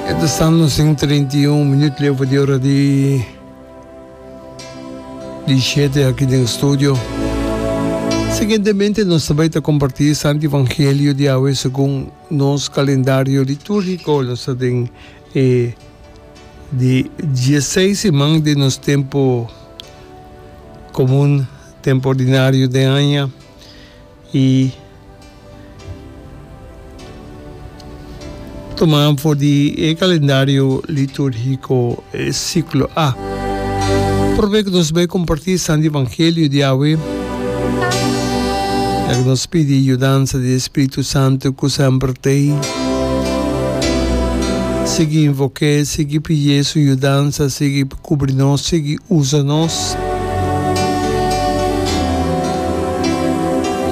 Eto staan nos en 31 minuut leu for di ora di di shete aki den studio. Siguientemente nos ta bay ta comparti e Santo Evangelio di awe segun nos calendario litúrgico. Nos ta den e di 16 seman den nos tempo comun, tempo ordinario den aña. I toman for di e kalendario litúrgiko e siklo A. Promé ku nos bai kompartí Santi Evangelio di awe, ta ku nos pidi yudansa di e Spiritu Santu ku semper t'ei. Sigui invok'é, sigui pid'é su yudansa, sigui. Kubri nos sigui usa nos.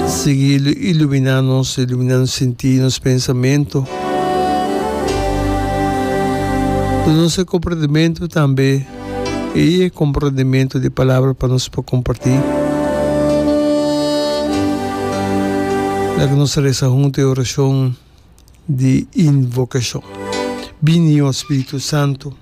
Sigui iluminá nos, iluminá nos sintí, nos pensamentu. Duna nos e komprendimentu tambe i e komprendimentu di palabra pa nos por kompartí. Laga nos resa huntu e orashon di invokashon. Bini, o Spiritu Santu.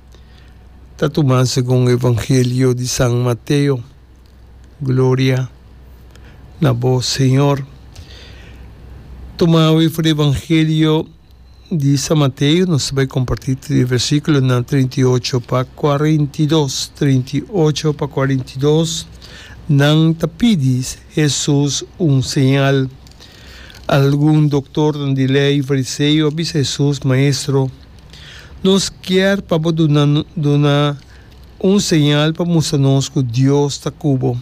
ta tumá segun Evangelio di San Mateo. Gloria na bo, Señor. Tumá awe for di Evangelio di San Mateo, nos ta bai kompartí tri versíkulonan treinta i ocho pa kuarenta i dos. Treinta i ocho pa kuarenta i dos, nan ta pidi Hesus un señal. Algun doktornan di lei, fariseo, a bisa Hesus, Maestro, Nos kier pa bo duna duna un señal pa mustra nos cu Dios ta cu bo.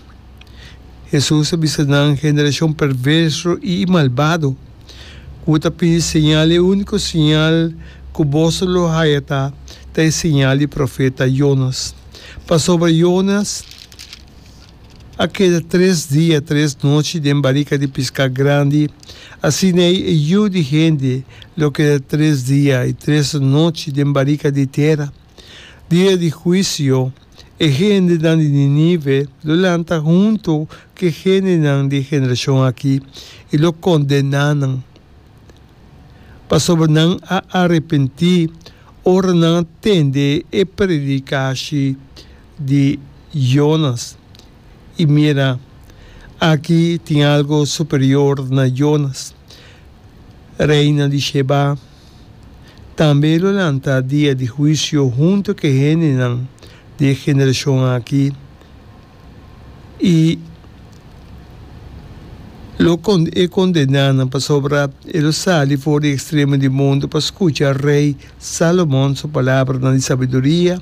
Jesús a bisa nan, Generacion perverso y i malbado, cu bo ta pidi señal, e unico señal cu boso a lo haya ta, ta e señal di profeta Jonas. Pasobra Jonas. A keda tres dia, tres nochi den barika di piská grandi, asin'ei e yu di hende lo keda tres dia i tres nochi den barika di tera. Dia di huisio, e hendenan di Ninive lo lanta huntu ku e hendenan di e generashon akí i lo kondená nan, pasobra nan a arepentí ora nan a tende e predikashi di Jonas i mira, aki tin algu superior na Jonas. Reina di Shebá tambe lo lanta dia di huisio huntu ku e hendenan di e generashon aki i lo kondená nan pasobra e lo sali for di ekstremo di mundu pa skucha rei Salomon su palabranan di sabiduria